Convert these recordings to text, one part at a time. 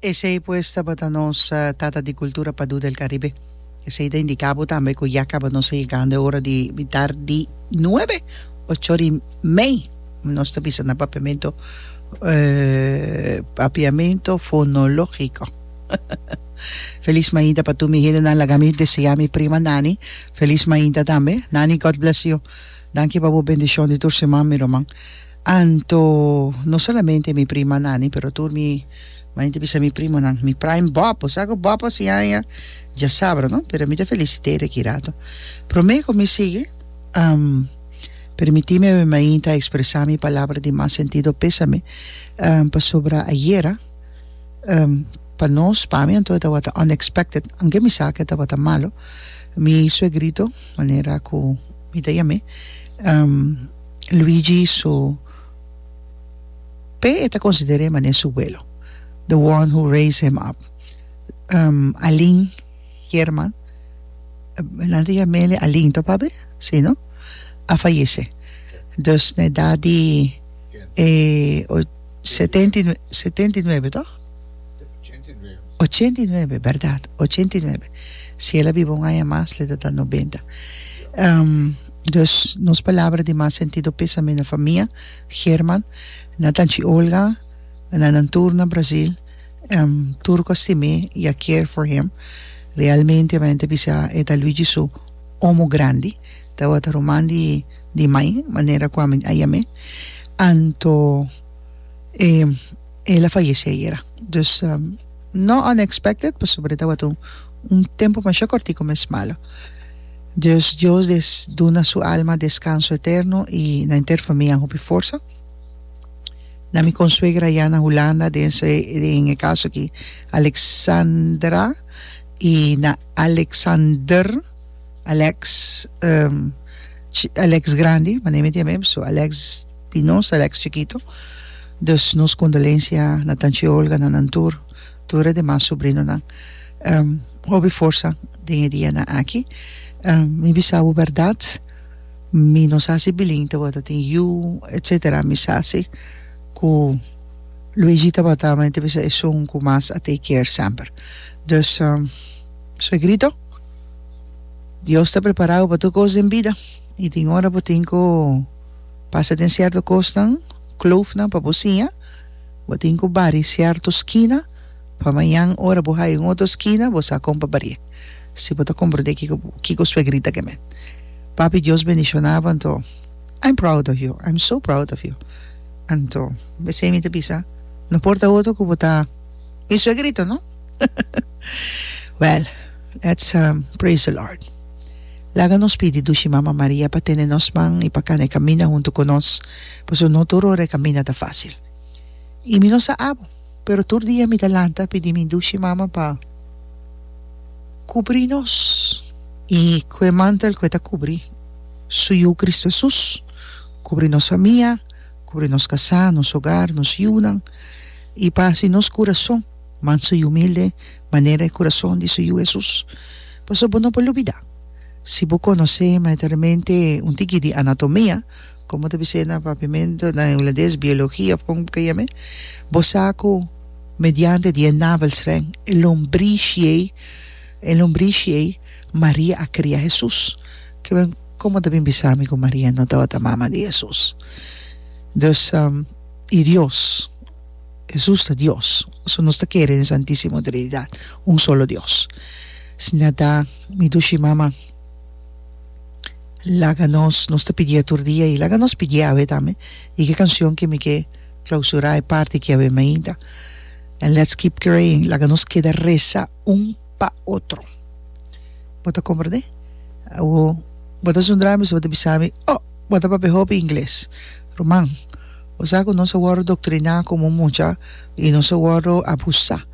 Esei pues tabata nos Tata di Cultura Padú del Caribe. Esei ta indiká bo tambe ku ya kaba nos a yegando e ora di bitar di nuebe, ocho di mei. Nos ta bisa na papiamento papiamento fonológiko. Felis mainta pa tur mi hendenan. Laga mi deseá mi prima Nani felis mainta tambe. Nani, God bless you. Danki pa bo bendishon di tur siman mi ruman. Anto no solamente mi primanan ani pero tur mi maña bisa mi primonan mi prime bòb bo sa ku bòb a siña aña dja sabra no pero mi ta felisite riba ki rato promé ku mi sigui permitime awe mainta ekspresá mi palabra di mas sentido pésame pasobra ayera pa nos pa mi anto e tabata unexpected aunke mi sa ku e tabata malu mi suegrito manera ku mi ta yam'é. Luigi su p'e e ta consider'é manera su welo, the one who raise him up. Um, Alin Herman, nan ta yam'ele Alin to pap'e? Si no? A fayece. Dus na e edad di e setenta y setenta y nuebe to? Ochenta y nuebe, berdad, ochenta y nuebe. Si el a biba un aña mas, lo ta ta nobenta. Um. Dus, nos palabra di mas sentido pésame na famia German, na tanchi Olga, na nan tur na Brasil, em tur ku a stim'é i a care for him. Realmente mi ta bisa e ta Luigi su omo grandi, tabata ruman di di mai, manera ku ami a yam'é. Anto e. El a fayece ayera. Dus no unexpected pasobra tabata un un tempo masha cortico mes malo. Dus Dios des duna su alma descanso eterno y na enter famia hopi forsa. Na mi consuegra ayá na Hulanda den se den e caso aki Alexandra y na Alexander Alex Alex grandi manera mi tin a bem so Alex. di nos Alex Chikito. Dus nos kondolensia na Tanchi Olga, na nan tur, tur e demas subrinonan. Hopi forsa den e dianan aki. Mi bisa bo bèrdat, mi no sa si Bilin tabata tin yu etsetera, mi sa si ku Luigi tabata, mi ta bisa esun ku mas a take care semper. Dus, suegrito, Dios ta prepará bo pa tur kos den bida i tin ora bo tin ku. Pasa den sierto kosnan, kloofnan pa bo siña, bo tin ku bari sierto skina, pa mañan ora bo haya un otro skina bo sa kon pa bari'e. Si bo ta komprondé kiko kiko swegrita ke men. Papi Dios bendishona bo anto I'm proud of you, I'm so proud of you. Anto mesei mi ta bisa no por ta otro ku bo ta mi swegrito no. Well let's praise the Lord. Laga nos pidi dushi Mama Maria pa tene nos man i pa kana e kaminda huntu ku nos, pasobra no tur ora e kaminda ta fásil. I mi no sa abo, pero tur dia mi ta lanta pidi mi dushi Mama pa kubrí nos i ku e mantel ku e ta kubrí Su Yu Kristu Hesus, kubrí nos famia, kubrí nos kasá, nos ogar, nos yunan i pa hasi nos kurason. Manso i humilde manera e kurason di su Yu Hesus. Pasobra bo no por lubidá, si bo konosé mayormente un tiki di anatomia, komo ta bis'é na papiamento, na hulandes, biologia òf kon bo ta yam'é, bo sa ku mediante di e navelstreng, e lombrishi ei, e lombrishi ei, Maria a kria Hesus. Kiben komo ta bin bisa mi ku Maria no tabata mama di Hesus? Dus, i Dios. Hesus ta Dios, so nos ta kere den Santisimo Trinidat, un solo Dios. Si na ta mi dushi mama, laga nos, nos ta pidié tur dia i laga nos pidié awe tambe, i ke kansion ke mi ke klausurá e parti ke awe mainta, and let's keep praying, laga nos keda resa un pa otro. Bo ta komprendé? Awo bo ta zundra mi, so bo ta bisa mi, oh, bo ta papia hopi ingles, ruman. O sa ku nos a wòrdu doktriná komo mucha i nos a wòrdu abusá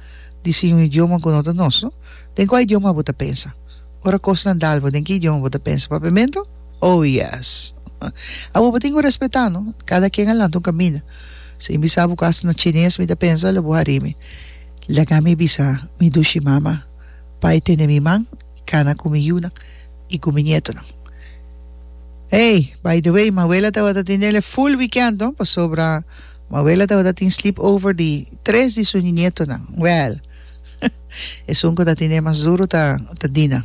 di siña un idioma ku no ta nos. Den kua idioma bo ta pensa? Ora kosnan dal bo, den ki idioma bo ta pensa? Papiamento? Oh, yes! Awor bo tin ku respetá, no? Kada ken a lanta un kaminda. Si mi bisa bo ku asta na chines mi ta pensa, lo bo harí mi. Laga mi bisa mi dushi mama pa e tene mi man. i cana cu mi yiunan i cu mi nietonan. Ey, by the way, Mabuela tabata tin denle full weekend, no? Pasobra Mabuela tabata tin sleepover di tres di su nietonan. Well, esun cu ta tin den mas duro ta, ta Dina.